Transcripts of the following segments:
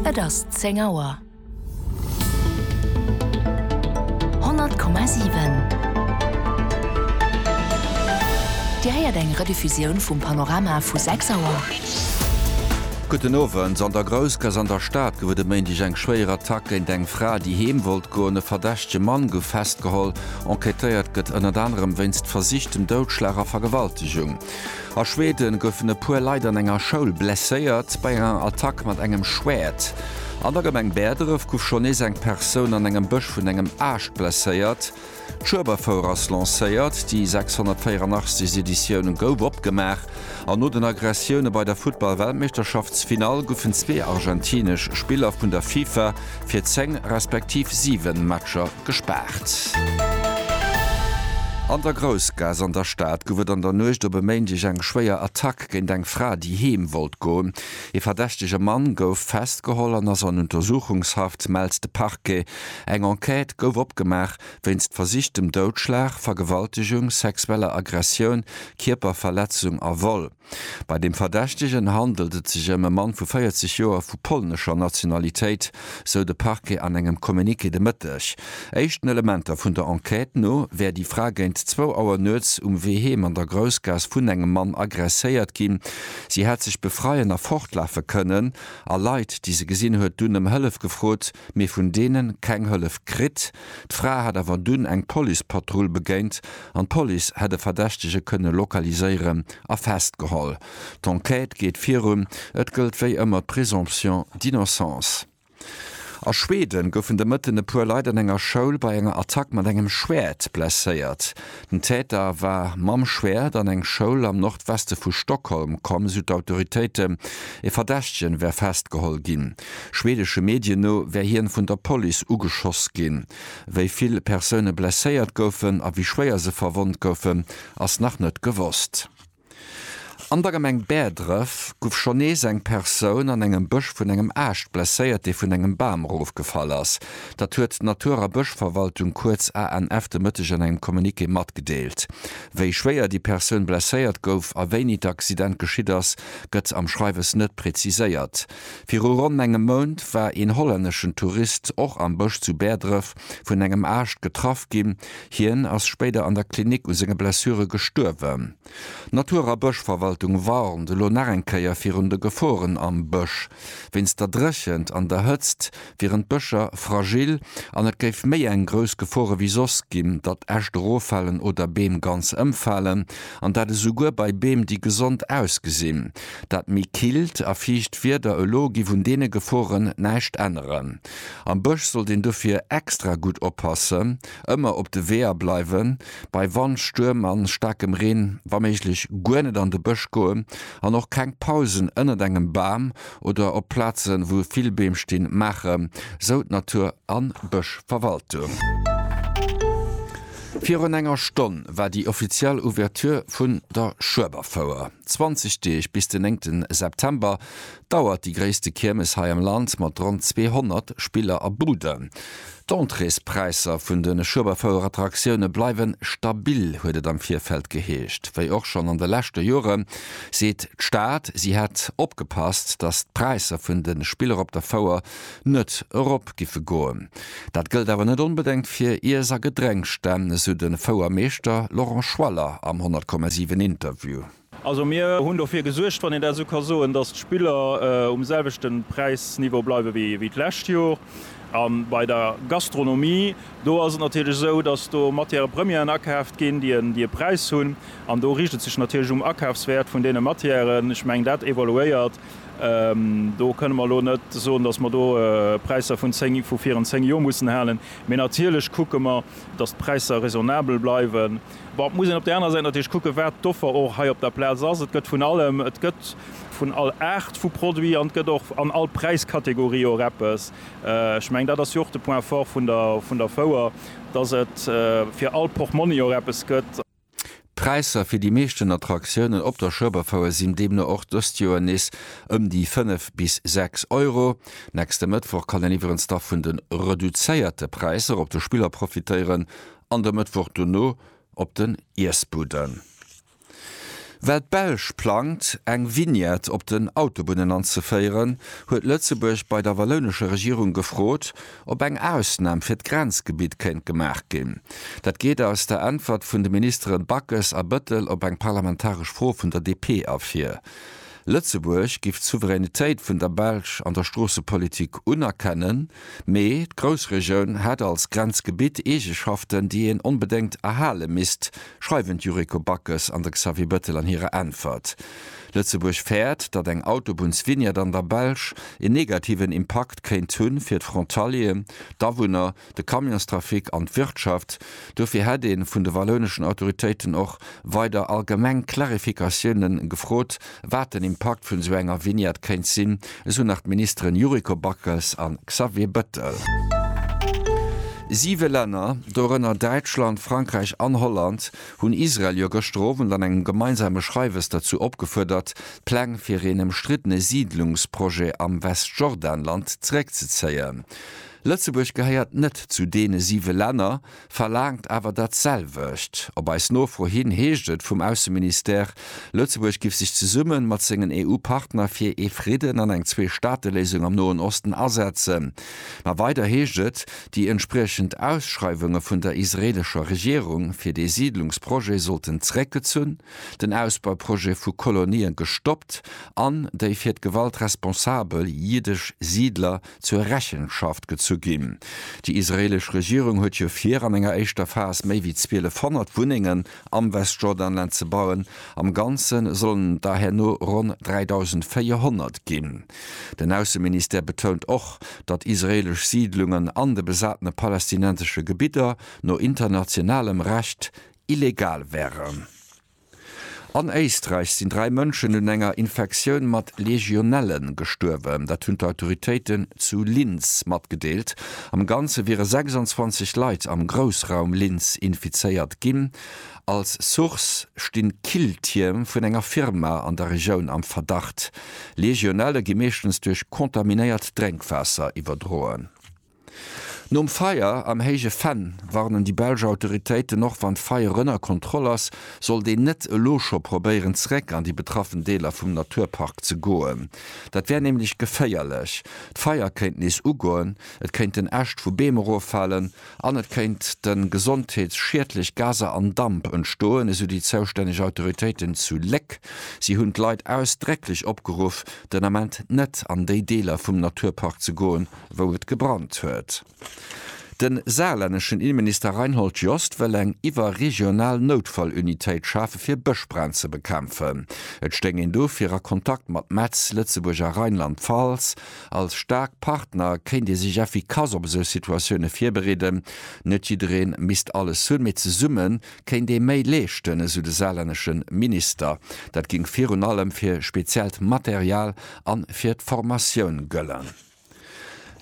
Et ass 10 Auer. 100,7 Dir héiert eng Rediffusioun vum Panorama vu 6 Auer. Gudden Owend. An der Groussgass an der Stad gouf et e Méindeg eng schwéier Attack géint eng Fra, déi heem wollt goen. E verdächtege Mann gouf festgeholl. Enquêtéiert gëtt ënnert anerem wéinst versichtem Doudschlag a Vergewaltegung. A Schweden goufen e puer Leit an enger Schoul blesséiert bei enger Attack mat engem Schwäert. An der Gemeng Bäerdref gouf schonn nees eng Persoun an engem Bësch vun engem Aascht blesséiert. D'Schueberfouer ass lancéiert, déi 684. Editioun gouf opgemaach an no den Aggressioune bei der Futtball-Weltmeeschterschaftsfinall goufen zwee argentinesch Spiller vun der FIFA fir 10 respektiv 7 Matcher gespaart. An der Groussgaass an der Stad gouf et an der Nuecht op e Méindeg eng schwéier Attack géint eng Fra, déi heem wollt goen. Ee verdächtege Mann gouf festgeholl an ass an Untersuchungshaft, mellt de Parquet. Eng Enquête gouf opgemaach wéinst versichtem Doudschlag, Vergewaltegung, sexueller Aggressioun, Kierperverletzung a Vol. Bei dem Verdächtegen handelt et sech ëm e Mann vu 40 Joer vu polnescher Nationalitéit, sou de Parquet an engem Communiqué de Mëtteg. Éischten Elementer vun der Enquête no wär déi Fra géint zwou Auer nuets um Wee heem an der Groussgaass vun engem Mann agresséiert ginn. Si hätt sech befreien a fortlafe kënnen a Leit, déi se gesinn huet, dunn ëm Hëllef gefrot, mee vun deene keng Hëllef kritt. D'Fra hätt awer dunn eng Policepatrull begéint an d'Police hätt e Verdächtege kënne lokaliséieren a festgeholl. D'Enquête geet virun, et gëllt wéi ëmmer d'Présomption d'innocence. A Schweden goufen de Mëtten e puer Leit an enger Schoul bei enger Attack mat engem Schwäert blesséiert. Den Täter war mam Schwäert an eng Schoul am Nordweste vu Stockholm komm, sou d'Autoritéiten. Ee Verdächtegen wär festgeholl ginn. Schwedesche Medien no wär hien vun der Police ugeschoss ginn. Wéi vill Persoune blesséiert goufen a wéi schwéier se verwonnt goufen, ass nach net gewosst. An der Gemeng Bäerdref guff schonn nees eng Persoun an engem Bësch vun engem Aascht blesséiert, dee vun engem Bam erofgefall ass. Dat huet d'Natur a Bëschverwaltung, kuerz ANF, de Mëtteg an engem Communiqué matgedeelt. Wéi schwéier déi Persoun blesséiert gouf a wéini d'Accident geschitt ass, gëtt am Schreiwes net preziséiert. Viru ronn engem Mount war een hollänneschen Tourist och am Bësch zu Bäerdref vun engem Aascht getraff ginn. Hien ass spéider an der Klinik u senge Blessure gestuerwen. D'Natur a Bëschverwaltung warnt elo nach eng Kéier virun de Geforen am Bësch. Wéinst der Dréchent an der Hëtzt wieren d'Bëscher fragil an et géif méi eng grouss Gefor ewéi soss ginn, datt Äscht eroffalen oder Beem ganz ëmfalen. An dat esouguer bei Beem, déi gesond ausgesinn. Dat méi killt a fiicht Wieder elo giff un deene Geforen näischt änneren. Am Bësch sollt een dofir extra gutt oppassen, ëmmer op de Weeër bleiwen, bei Wand, Stuerm a staarkem Reen wa méiglech guer net an de Bësch goen an och keng Pausen ënnert engem Bam oder op Plazen, wou vill Beem stinn, maachen, sou d'Natur a Bëschverwaltung. Virun enger Stonn war déi offiziell Ouverture vun der Schueberfouer. 20 Deeg bis den 9 September dauert déi gréisste Kiermes hei am Land mat ronn 200 Spiller a Buden. D'Entréespräisser vun de Schueberfouerattraktioune bleiwe stabil, huet et am Virfeld geheescht. Wéi och schonn an de leschte Jore seet d'Stad, si hätt opgepasst, datt d'Präisser vun de Spiller op der Fouer net erop giffe goen. Dat gëllt awer net onbedengt fir Iess a Gedrénksstänn, esou de Fouermeeschter Laurent Schwaller am 100,7 Interview. Also mir hunn dofir gesuergt, wann een dat esou ka soen, datt d'Spiller um selwechte Präisniveau bleiwe wéi d'lescht Jor. A bei der Gastronomie, do ass et natierlech esou, datt do Matière premièren akaaft ginn, déi e Präis hunn. An do riicht et sech natierlech um Akafswäert vun deene Matièren. Ech mengen, dat evoluéiert. Do kënne mer elo net soen, datt mer do Präisser vun viren zéng Jor mussen halen. Mee natierlech kucke mer, datt d'Präisser raisonnabel bleiwen. Bon, et muss een op där anerer Säit natierlech kucken, wat d'Offer och hei op der Plaz ass. Et gëtt vun allem, et gëtt vun all Aart vu Produit an et gëtt och an all Präiskategorie och eppes. Ech mengen, dat ass jo och de Point fort vun der, vun der Fouer, dass et fir all Portmonni och eppes gëtt. D'Präisser fir déi meeschten Attraktiounen op der Schueberfouer sinn deemno och dëst Joer nees ëm déi 5 bis 6 Euro. Nächste Mëttwoch kann een iwwerens da vun de reduzéierte Präisser op de Spiller profitéieren an de Mëttwoch dono op den Iessbudden. Well d'Belsch plangt, eng Vignette op den Autobunnen anzeféieren, huet Lëtzebuerg bei der wallounescher Regierung gefrot, ob eng Ausnam fir d'Grenzgebitt kéint gemaach ginn. Dat geet aus der Äntwert vun de Ministere Backes a Bettel op eng parlamentaresch Fro vun der DP ervir. Lëtzebuerg giff d'Souveränitéit vun der Belsch an der Stroossepolitik unerkennen, mee d'Groussregioun hätt als Grenzgebitt Eegeschaften, déi een onbedéngt erhale misst, schreiwen d'Yuriko Backes an de Xavier Bettel an hirer Äntwert. Lëtzebuerg fäert, datt eng Autobunnsvignette an der Belsch een negativen Impakt kéint hu fir d'Frontalieren, d'Awunner, de Camionstrafic an d'Wirtschaft. Dofir hätt ee vun de wallouneschen Autoritéiten och weider allgemeng Clarificatioune gefrot, wat den Impakt vun esou enger Vignette kéint sinn, esou nach d'Ministeren Yuriko Backes a Xavier Bettel. Siwe Länner, dorënner Däitschland, Frankräich an Holland, hunn Israel jo gëschter Owend an engem gemeinsame Schreiwes derzou opgefuerdert, d'Pläng fir een ëmstriddene Siidlungsprojet am Westjordanland zeréckzezéien. Lëtzebuerg gehéiert net zu deene siwe Länner, verlaangt awer dat selwecht. Op eis Nofro hin heescht et vum Ausseministère, Lëtzebuerg giff sech zesumme mat sengen EU-Partner fir ee Fridden an eng Zwee-Staate-Léisung am Noen Osten asetzen. Ma weider heescht et, déi entspriechend Ausschreiwunge vun der israeelescher Regierung fir dee Siidlungsprojet sollten zeréckgezunn, den Ausbauprojet vu Kolonien gestoppt an déi fir d'Gewalt responsabel jiddesch Siidler zur Rechenschaft gezu ginn. Déi israeelesch Regierung huet jo vir, an enger éischter Phas méi wéi 1200 Wunnengen am Westjordanland ze bauen. Am Ganze sollen et der herno ronn 3.400 ginn. Den Ausseministère betount och, datt israeelesch Siidlungen an de besatene palästinensesche Gebidder no internationalem Recht illegal wären. An Éisträich sinn dräi Mënschen un enger Infektioun mat Legionelle gestuerwen. Dat hunn d'Autoritéiten zu Linz matgedeelt. Am Ganze wiere 26 Leit am Groussraum Linz infizéiert ginn. Als Source sti Killtierm vun enger Firma an der Regioun am Verdacht. Legionelle gi meeschtens duerch kontaminéiert Drénkwaasser iwwerdroen. Nom Feier am Héije Venn warnen déi belsch Autoritéiten, och wann d'Feier ënner Kontroll ass, sollt een net elo scho probéieren zeréck an déi betraffen Deeler vum Naturpark ze goen. Dat wär nämlech geféierlech, d'Feier kéint nees ugoen, et kéinten Äscht vu Beem eroffalen an et kéinte gesondheetsschiedlech Gaser an Damp entstoen, esou déi zoustänneg Autoritéiten zu Léck. Si hunn d'Leit ausdrécklech opgeruff, den Ament net an déi Deeler vum Naturpark ze goen, wou et gebrannt huet. De saarlänneschen Innenminister Reinhold Jost wëll eng iwwerregional Noutfallunitéit schafe fir Bëschbränn ze bekämpfen. Et stéing een dofir a Kontakt mat Metz, Lëtzebuerg a Rheinland-Pfalz. Als staark Partner kéint ee sech effikass op esou Situatioune virbereeden. Net jidderee misst alles hunn, mee zesumme kéint ee méi leeschten, esou de saarlännesche Minister. Dat géing virun allem fir speziellt Material a fir d'Formatioun gëllen.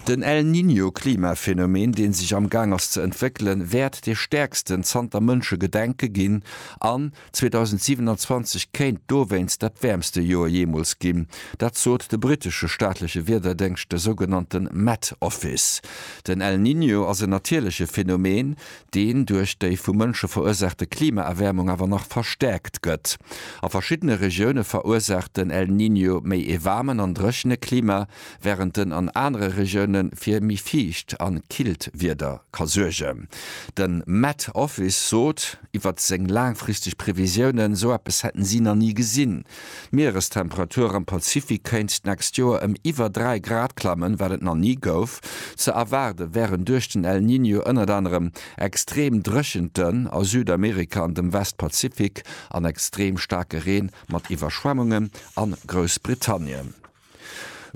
Den El Niño Klimaphänomen, deen sech am Gaang ass ze entwéckelen, wäert dee stäerksten zanter Mënsche Gedenke ginn an 2027 kéint dowéinst dat wäermste Joer jeemools ginn. Dat sot de brittesche staatleche Wiederdéngscht, de sougenannte Met Office. Den El Niño ass en natierleche Phänomen, deen duerch déi vu Mënsche verursaachte Klimaerwäermung awer nach verstäerkt gëtt. A verschiddene Regioune verursaacht den El Niño méi ee waarmen an dréchene Klima, wärend en an anere Regioune fir méi fiicht a killt Wieder ka suergen. De Met Office sot iwwert seng laangfristeg Previsiounen, sou eppes hätten si nach ni gesinn. D'Mierestemperatur am Pazifik kéint d'nächst Joer ëm iwwer 3 Grad klammen, wat et nach ni gouf. Ze erwaarde wären duerch den El Niño ënnert anerem extreem Dréchenten a Südamerika an dem Westpazifik an extreem staarke Reen mat Iwwerschwemmungen a Groussbritannien.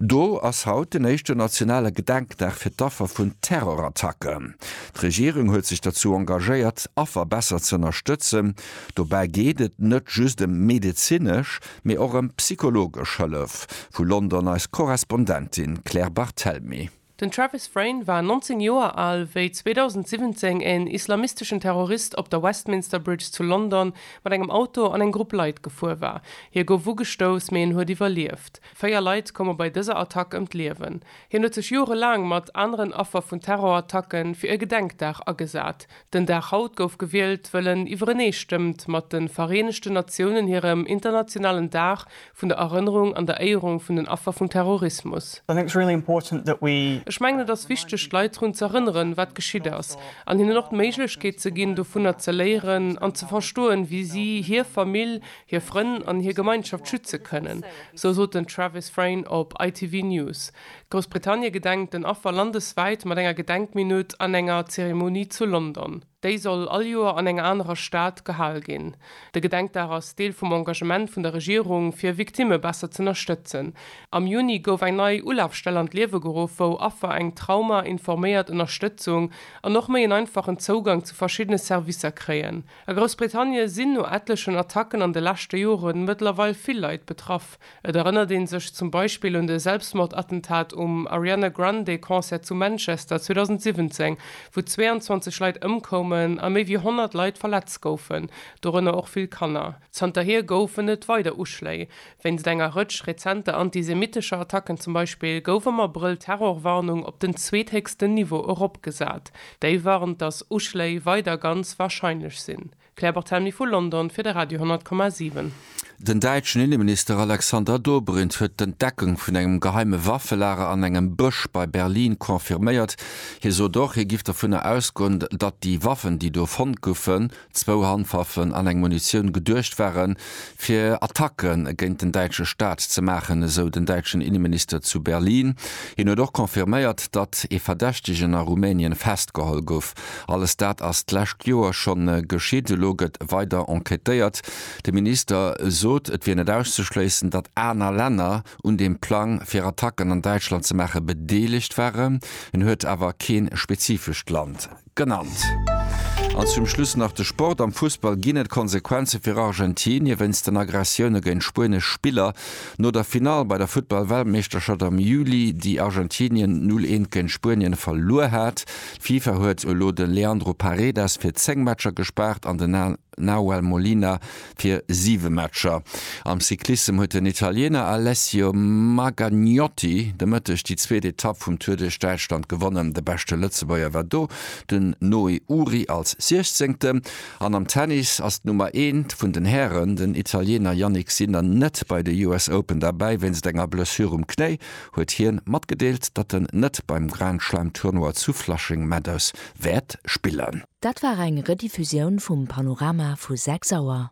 Do ass haut den éischten nationale Gedenkdag fir d'Affer vun Terrorattacken. D'Regierung huet sech derzou engagéiert, Affer besser ze ënnerstëtzen. Dobäi geet et net just ëm medezinesch, mee och ëm psychologesch Hëllef, vu London eis Korrespondentin Claire Barthelmy. Den Travis Frayne war 19 Joer al, wéi 2017 en islamisteschen Terrorist op der Westminster Bridge zu London mat engem Auto an eng Grupp Leit gefuer war. Hie gouf ugestouss, mee en huet iwwerlieft. Véier Leit koume bei dëser Attack ëm d'Liewen. Hien huet sech jorelaang mat aneren Affer vun Terrorattacken fir e Gedenkdag agesat. Den Dag haut gouf gewielt, wëll en iwwerenee stëmmt mat de Vereenegten Natiounen hirem internationalen Dag vun der Erënnerung an der Éierung vun den Affer vum Terrorismus. Ech mengen et ass wichteg d'Leit drun ze erënneren, wat geschitt ass, an hinnen och d'Méiglechkeet ze ginn dovunner ze léieren an ze verstoen, wéi si hir Famill, hir Frënn an hir Gemeinschaft schütze kënnen, sou sot den Travis Frain op ITV News. Groussbritannie gedenkt den Affer landeswäit mat enger Gedenkminutt an enger Zeremonie zu London. Déi soll all Joer an enger anerer Stad gehal ginn. De Gedenkdag ass Deel vum Engagement vun der Regierung, fir Victimme besser z'ënnerstëtzen. Am Juni gouf eng nei Ulafstell an d'Liewe geruff, wou Affer eng Trauma informéiert Ënnerstëtzung an och méi en einfachen Zougang zu verschiddene Servicer kréien. A Groussbritannie sinn no etlechen Attacken an de leschte Jore mëttlerweil vill Leit betraff, Et erënnert een sech zum Beispill un de Selbstmordattentat um Ariana Grande Concert zu Manchester 2017, wou 22 Leit ëmkoumen a méi wéi 100 Leit verletzt goufen, dorënner och vill Kanner. Zanterhier goufen et weider Uschléi. Wéinst enger Rëtsch rezenter antisemitescher Attacken zum Beispill gouf am Abrëll d'Terrorwarnung op den zweethéchsten Niveau eropgesat. Déi warnt, datt Uschléi weider ganz warscheinlech sinn. Claire Barthelmy vu London fir de Radio 10,7. Den däitschen Inneminister Alexander Dobrindt huet d'Entdeckung vun engem geheime Waffelager an engem Bësch bei Berlin confirméiert. Hie sot och, hie giff dovunner ausgoen, datt déi Waffen, déi do fonnt goufen, zwou Handwaffen an eng Munitioun, geduecht waren, fir Attacke géint den däitsche Staat ze maachen, esou den däitschen Inneminister zu Berlin. Hien huet och confirméiert, datt ee Verdächtegen a Rumänien festgeholl gouf. Alles dat ass d'lescht Joer scho geschitt. Elo gëtt weider enquêtéiert. De Minister sot, et wier net auszeschléissen, datt aner Länner un deem Plang, fir Attacken an Däitschland ze maachen, bedeelegt waren. Hien huet awer kee spezifescht Land genannt. An zum Schluss nach de Sport. Am Fussball ginn et Konsequenze fir Argentinie wéinst den Aggressioune géint spuenesch Spiller. No der Finall bei der Futtball-Weltmeeschterschaft am Juli, déi Argentinien 0, 1 géint Spuenien verluer hat, D'FIFA huet elo de Leandro Paredes fir 10 Matcher gespaart an den Nahuel Molina fir 7 Matcher. Am Cyclissem huet den Italiener Alessio Maganiotti de Mëtteg déi zweet Etapp vum Tour duerch Däitschland gewonnen. De beschte Lëtzebuerger war do den Noé Uhri als Siechzéngten. An am Tennis ass d'Nummer eent vun den Hären, den Italiener Jannik Sinner net bei de US Open derbäi wéinst enger Blessure um Knéi. huet hien matgedeelt, datt en net beim Grand Slam Tournoi zu Flushing Meadows wäert spillen. Dat war eng Rediffusioun vum Panorama vu 6 Auer.